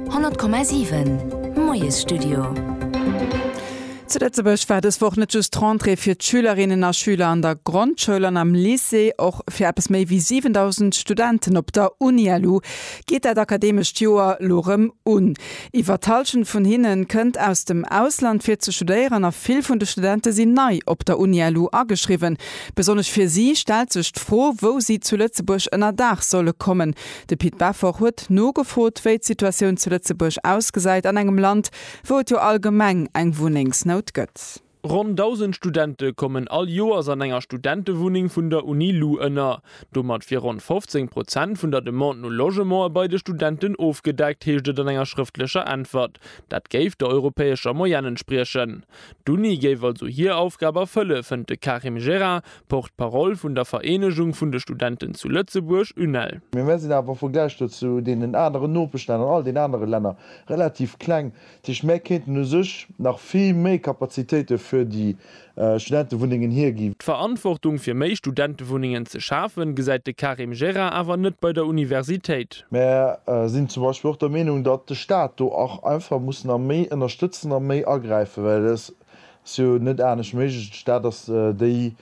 100,7 Moiesstudio. Zu Lëtzebuerg war dës Woch net just d'Rentrée fir d'Schülerinnen a Schüler an der Grondschoul an am Lycée. Och fir eppes méi wéi 7.000 Studenten op der UniLu geet dat akademescht Joer lo rëm un. Iwwer d'Hallschent vun hinne kënnt aus dem Ausland fir ze studéieren a vill vun de Studente sinn nei op der UniLu ageschriwwen. Besonnesch fir si stellt sech d'Fro, wou si zu Lëtzebuerg ënnerdaach solle kommen, De Pit Beffort huet nogefrot, wéi d'Situatioun zu Lëtzebuerg ausgesäit, an engem Land, wou et jo allgemeng eng Wunnengsnout gëtt. Ronn 1.000 Studente kommen all Joers an enger Studentewunneng vun der Uni lu ënner. Domat wier ronn 15 Prozent vun der Demande no Logementer bei de Studenten ofgedeckt, heescht et an enger schrëftlecher Äntwert. Dat géif der europäescher Moyenne entspriechen. D'Uni géif also hir Aufgab erfëlle, fënnt de Karim Jera, Porte-parole vun der Vereenegung vun de Studenten zu Lëtzebuerg, UNEL. Mee mir sinn awer am Vergläich do zu deenen aneren Nopeschlänner an all den anere Länner relativ kleng. Dat heescht, mär kéinten u sech nach vill méi Kapazitéite fir déi Studentewunnengen hiergi. D'Verantwortung fir méi Studentewunnengen ze schafen, gesäit de Karim Jera awer net bei der Universitéit. Mer sinn zum Beispill och der Meenung, datt de Stat do och einfach muss nach méi ënnerstëtzen a méi agräifen, well et ass jo net anescht méiglech. De Stat ass déi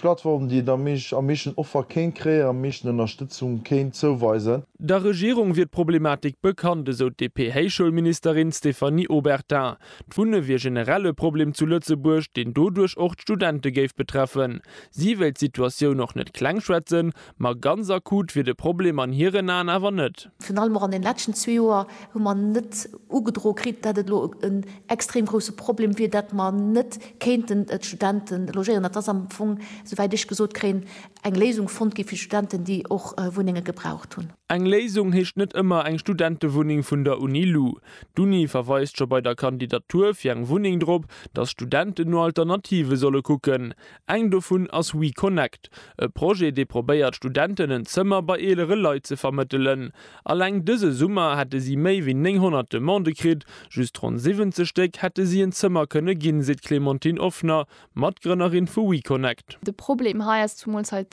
Plattform, déi et am meeschten Offer kéint kréien, am meeschten Ënnerstëtzung kéint zouweisen. Der Regierung wier d'Problematik bekannt, esou d'DP-Héichschoulministerin Stéphanie Obertin. D'Wunne wier generell e Problem zu Lëtzebuerg, deen doduerch och d'Studente géif betreffen. Si wéilt d'Situatioun och net klengschwätzen, Ma ganz akut wier de Problem an hiren Aen awer net. Virun allem och an den leschten zwee Joer hu mer net ugedroe kritt, dat et elo en extrem grousse Problem wier, dat mer net kéinten d'Studente logéieren. Et ass am Fong, souwäit ech gesot kréien, eng Léisung fonnt gi fir d'Studenten, déi och Wunnenge gebraucht hunn. Eng Léisung heescht net ëmmer eng Studentewunneng vun der Uni lu. D'Uni verweist scho bei der Kandidatur fir eng Wunneng drop, datt Studenten no Alternative solle kucken. Eng dovun ass WeConnect, e Projet, dee probéiert, Studenten en Zëmmer bei eelere Leit ze vermëttelen. Alleng dëse Summer hätte si méi wéi 900 Demandë kritt, just ronn 70 Stéck hätte si en Zëmmer kënne ginn, seet d'Clémentine Offner, Matgrënnerin vu WeConnect. De Problem hei ass zumools hei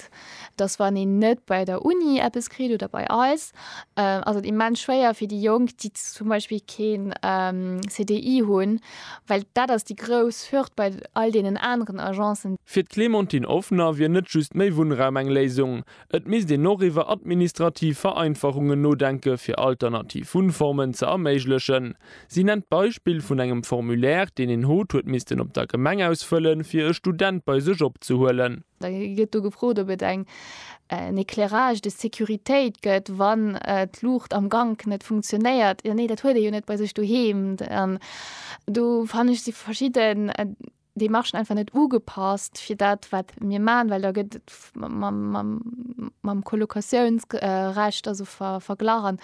dass wann een net bei der Uni eppes kritt oder bei eis, ass et immens schwéier fir déi Jonk, déi zum Beispill keen CDI hunn, well dat ass déi grouss Hürd bei all deenen aneren Agencen. Fir d'Clémentine Offner wier net just méi Wunnraum eng Léisung. Et misst een och iwwer administrativ Vereinfachungen nodenke fir alternativ Wunnformen ze erméiglechen. Si nennt d'Beispill vun engem Formulaire, deen een hot huet missten op der Gemeng ausfëllen, fir e Student bei sech opzehuelen. Da gëtt do gefrot, ob et en éclairage de sécuritéit gëtt, wann d'Luucht am Gank net funktionéiert. Jo, nee, dat huet ee jo net bei sech doheem. Do fannen ech, si verschidde. Déi Marchen einfach net ugepasst fir dat, wat mir maachen, well da gëtt et mam Collocatiounsrecht also verglach an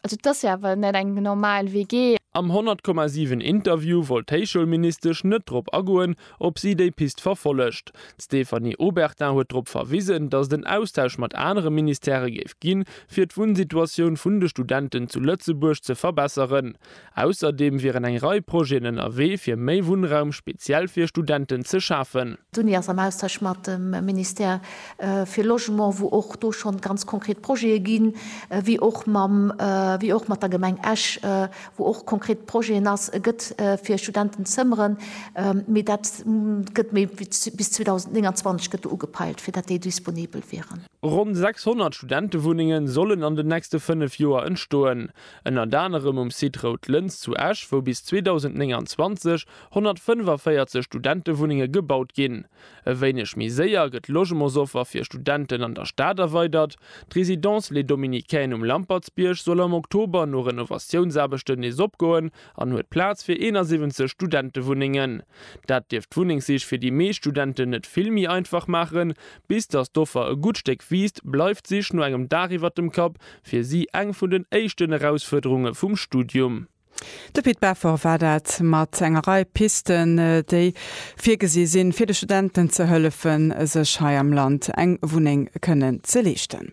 also et ass jo awer net eng normal WG. Am 100, 7 Interview wollt d'Héichschoulministesch net drop agoen, ob si déi Pist verfollegt. D'Stéphanie Obertin huet drop verwisen, datt et en Austausch mat anere Ministèrë géif ginn, fir d'Wunnsituatioun vun de Studenten zu Lëtzebuerg ze verbesseren. Ausserdeem wieren eng Rei Projeten ënnerwee, fir méi Wunnraum speziell fir Studenten ze schafen. D'Uni ass am Austausch mat dem Ministère fir Logement, wou och do schonn ganz konkret Projete ginn, wéi och mam, wéi och mat der Gemeng Esch, wou och konkret Projeten ass, gëtt fir Studenten Zëmmeren. Mee dat gëtt méi wéi bis 2029 gëtt do ugepeilt, fir dat déi disponibel wieren. Ronn 600 Studentewunnenge sollen an den nächste fënnef Joer entstoen. Ënnert anerem um Site Rout Lëns zu Esch, wou bis 2029 145 Studentewunnenge gebaut ginn. E wéineg méi séier gëtt d'Logementsoffer fir Studenten an der Stad erweidert. D'Résidence Les Dominicaines um Lampertsbierg soll am Oktober no Renovatiounsaarbechten nees opgoen, an huet Plaz fir 71 Studentewunnengen. Dat dierft d'Wunnengssich fir déi meescht Studenten net vill méi einfach maachen. Bis datt d'Offer e gutt Stéck wiisst, bleift d'Sich no engem Daach iwwert dem Kapp fir si eng vun den éischten Erausfuerderunge vum Studium. De Pit Beffort war dat mat enger Rei Pisten, déi virgesi sinn, fir de Studenten ze hëllefen, sech hei am Land eng Wunneng kënnen ze leeschten.